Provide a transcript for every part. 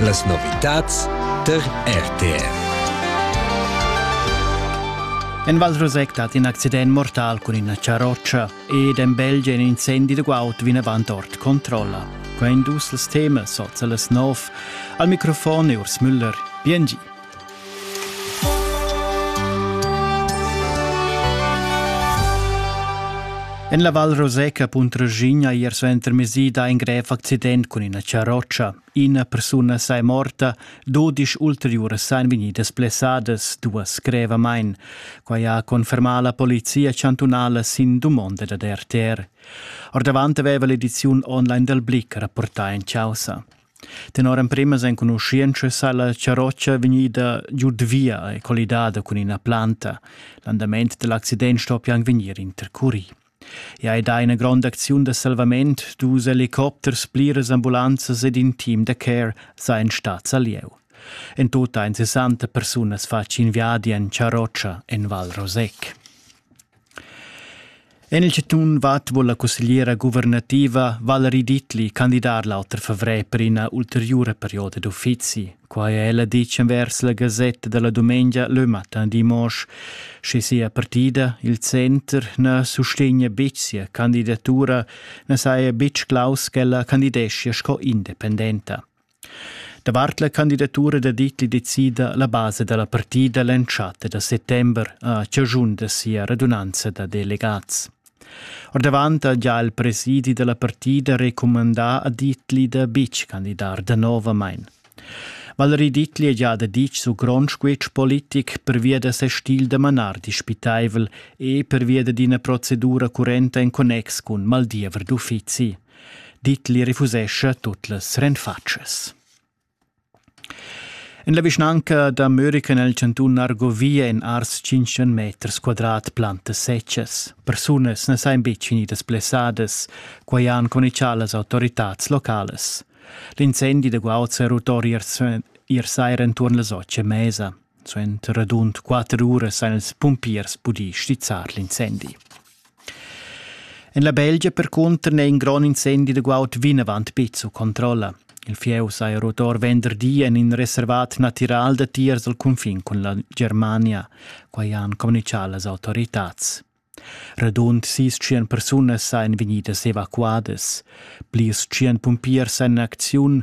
Las novitads tar RTR. En Val Rosec dat in accident mortal cun ina charrotscha ed en Belgia in incendi de guaud vinavant ord controlla. Quei dus las temas oz las nov. Al microfon e Urs Müller. Biengi. En la Val Roseca Puntregigna ier suentermesi da in grev accident cun ina charrotscha. Ina persuna sei morta, dudisch ulteriuras ein vegnidas blessadas, duas grevamain. Quai ha confermà la polizia chantunala sin dumonda dad RTR. Ordavant aveva l'ediziun online dal Blick rapportà in causa. Tenor empremas enconuschientschas sa la charrotscha vegnida giud via e collidada cun ina planta. L'andament dall'accident stoppia anc vegnir intercurì. I ha dà ina gronda acziun da salvament, dus helicopters, pliras ambulanzas ed in team da care sajan stads a lieu. En tut ein 60 persunas fatg in viadi en charrotscha en Val Rosec. En il chantun Vad vul la cussegliera guvernativa Valerie Dittli candidar l'auter favrer per ina ulteriura perioda d'uffizi. Quai è ella ditg envers la gasetta da la dumengia Le Matin Dimanche. Sche sia partida, il center, na sustegna betg sia candidatura, na saja betg claus ch'ella candideschia sco independenta. Davart la candidatura da Dietli decida la basa da la partida l'entschatta da settember a chaschun da sia radunanza da delegats. Ordavant ha già il presidi da la partida recumandà a Dietli da betg candidar danovamain. Valerie Dietli è già da ditg su grond squitsch politic pervia da ses stil da manar dispitaivel e pervia d'ina procedura currenta en connex cun maldiever d'uffizi. Ditli refusescha tut las renfatschas. En la vischnanca da Murica nel chantun Argovia en ars 500 meters quadrat plantas secas. Persunas ne sain betg finidas blessadas, quai han comunichà las autoritads locales. L'incendi da guauds e rotori ir sair enturn las otg mesa. Suenter radund quatter uras han ils pumpiers pudì stizzar l'incendi. En la Belgia percunter n'è in grond incendi da guaud vinavant betg sut controlla. Il fieu saja rotor venderdi en in reservat natiral datiers dal cunfin cun la Germania. Quai han communitgà las autoritads. Radund sis tschient persunas sajan vegnidas evacuadas. Plirs tschient pumpiers èn en acziun.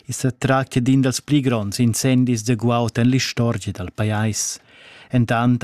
I sa tractia d'in dals pli gronds incendis da guaud en l'istorgia dal pajais. Entant